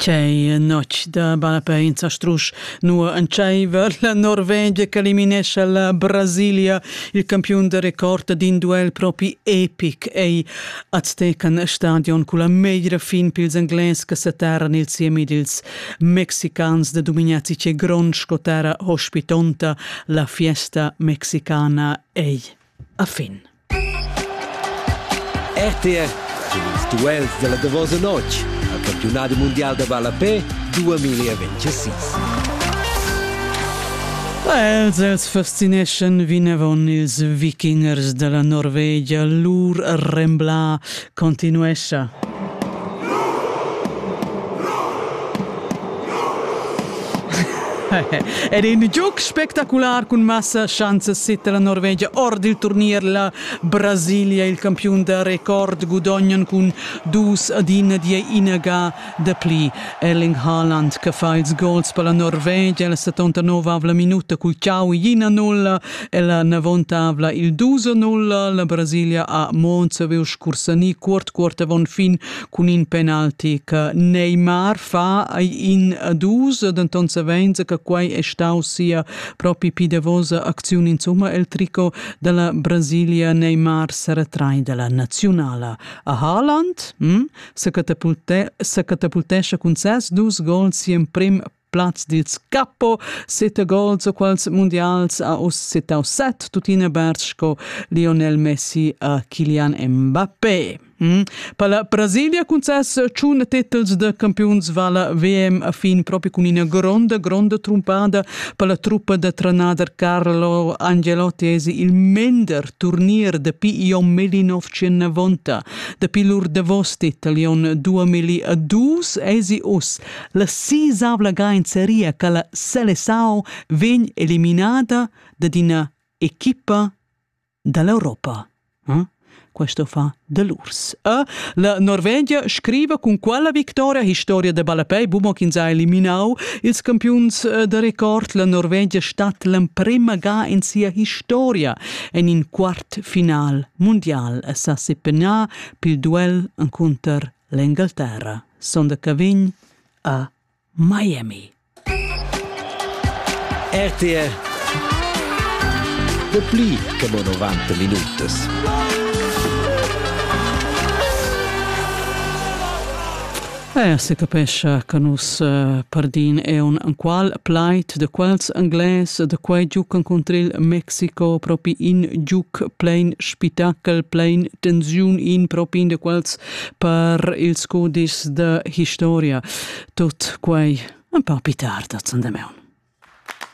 Tgei notg da balapeins a strusch, nua entscheiver la Norvegia che eliminescha la Brasilia, il campiun de record d'in duel propi epic ei Aztecan Stadion cu la meglra fin pils Englais che seterran il siemi dils mexicans de Dumignazzi che grond sco terra hospitonta la fiesta mexicana ei a fin. RTR cun ils duels dalla davosa notg al campiunadi mundial da ballapè 2026. Els els fascineschan vinavon ils vikingers dalla Norvegia lur rembla continuescha. Ed in giug spectacular cun massa schanzas sette la Norvegia ord il turnier la Brasilia il campiun da record gudognan cun dus ad in die inaga Dapli Erling Haaland che fa ils gols per la Norvegia la 79-avla minuta cul chau ina nulla e la 90-avla il 2-0. La Brasilia ha Monza viu scursani cuort cuort avon fin cun in penalti che Neymar fa ai in a dus, denton savens che quei è stau sia propi pidevosa acziun insomma el tricot della Brasilia Neymar seretrai della nazionala a Haaland hm? secatapultescha cun ses dus gols si emprim plaz dils capo, sette gols o quals mundials a us setau set, tuttina Berz sco Lionel Messi a Kylian Mbappé. Mm. Per la Brasilia cun ses tschun titels de campiuns vala VM a fin proprio con ina gronda, gronda trumpada per la truppa de trenader Carlo Angelotti es il mender turnier de Pi Jon Melinov 19 Dapi lur davos detalion 2002 esi us la sisavla gainzeria che la Selesao vegn eliminada da ina equipa dall'Europa. Hm? Questo fa dell'urs. E la Norvegia scrive con quella victoria historia de Balapei Bumo che ha eliminau ils campions eh, de record la Norvegia stat l'emprema ga in sia historia en in quart final mundial è sa sepegnà pil duel encunter l'Engalterra. Sonda Cavign a Miami. RTR Da pli che mo 90 minutas. Eir se capescha cha nus uh, pardin eun anqual plaid da quels Anglais da quai giuc encuntril Mexico propi in giuc plein spitachel, plein tensiun in propi in de quels per ils codices da historia. Tot quai un pa pitar da zandemeun.